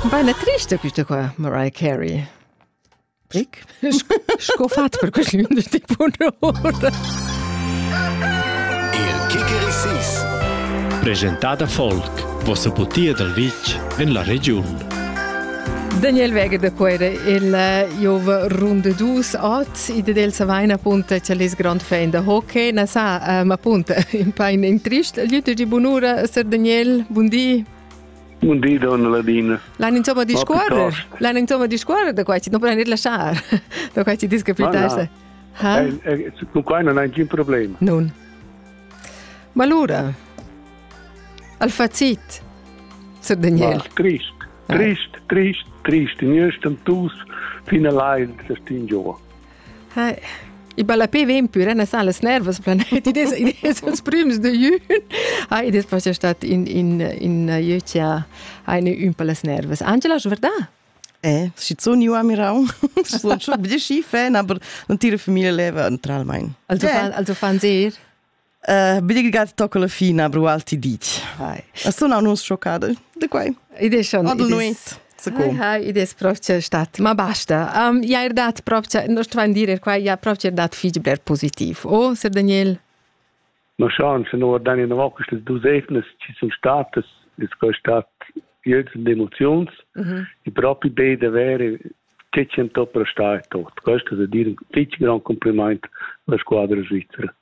Baina trista quista qua, Mariah Carey. Brick? Sco fat per quest lun de tempo ora. Il Kickerisis. Presentada folk, vossa butia dal vitg en la regiun. Daniel Weger de Quere, il Jove runde dus at, ide del Savaina punta, c'è les grand fan da hockey, na sa, uh, ma punta, in pain in trist, Liuto di bunura, Sir Daniel, buondì. Un di donna Ladina. L'han insomma discuorre? L'han insomma discuorre da quai, non puoi lasciar. Da quai ti dis che pitasce. Ha? Con quai non hai nessun problema. Non. Ma allora, al facit, Sir Daniel. Ma, trist, trist, trist, trist, in ersten Tuss, fin allein, das Ding jo. I ballapé ven pür na sa las nervas planet id es id es ils prüms de jün. Ah, id es forse stat in in in jeu chi ha eine ün per las nervas. Angela, schon verdà? Eh, schizun io a Mirau, sono schon ein bisschen schief, aber non tira famiglia leva naturalmente. Also, eh. fan, also fan sehr? Bidigigaz tocco la fina, brual ti dici. Sono annunz schoccada de quai. Id è schon. Adel nuit. Sicum. Hai, id es proprio stat, ma basta. Um, ja er dat proprio, non sto van dire qua, ja proprio er dat fig bler positiv. O, Sir Daniel? Ma schon, se nur dann in der Woche ist du Seifnes, ci sind Staates, ist kein Staat Geld und Emotions. Mhm. Ich proprio beide wäre, Tschechien top restaat tot. Questo è dire un gran complimento alla squadra svizzera.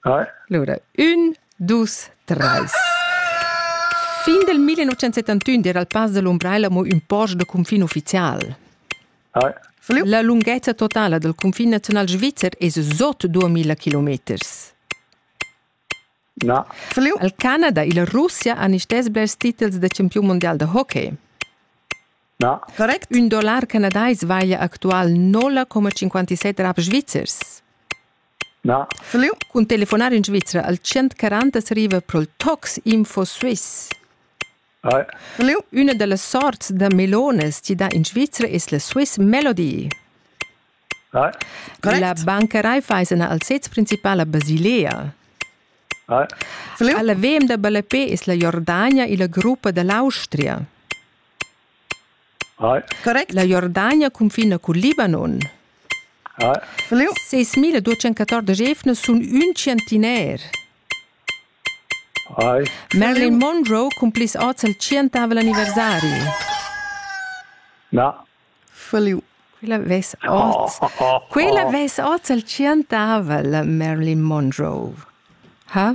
Allora, un, dus, treis. Fin del 1971 era il pass dell'Umbraella mo ün post de confin ufficial. La lunghezza totala del confin nazional svizzer es sot 2000 kilometers. No. Al Canada e la Russia han istes blers titels da campiun mondial de hockey. No. Correct? Un dollar canadais vaglia actual 0,57 rap svizzers. Fliu cun telefonar in Svizra al 140 arriva pro'l Tox Info Suisse. Fliu, üna da las sorts da melonas chi dà in Svizra es la Swiss Melody. La banca Raiffeisen ha al sez principal a Basilea. Alla VM da ballapè es la Jordania illa gruppa da l'Austria. Correct. La Jordania cunfina cul Libanon. Ses mille duecentoquatordic evna sun ün tschientiner. Marilyn Monroe cun plis oz al tschientavel anniversari. Na. Feliu. Quella ves oz. Quella ves oz al tschientavel, Marilyn Monroe. Ha?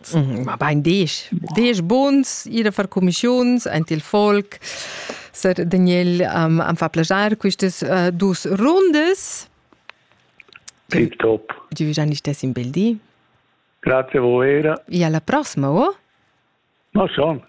Mhm, ma bein desch, desch buns ir a far commissiuns ant il folk. Sir Daniel um, am fa plagiar quistas uh, dus rundas. Tip top. Du già nicht das im Beldi? Grazie a voi. E alla prossima, oh? Ma schon.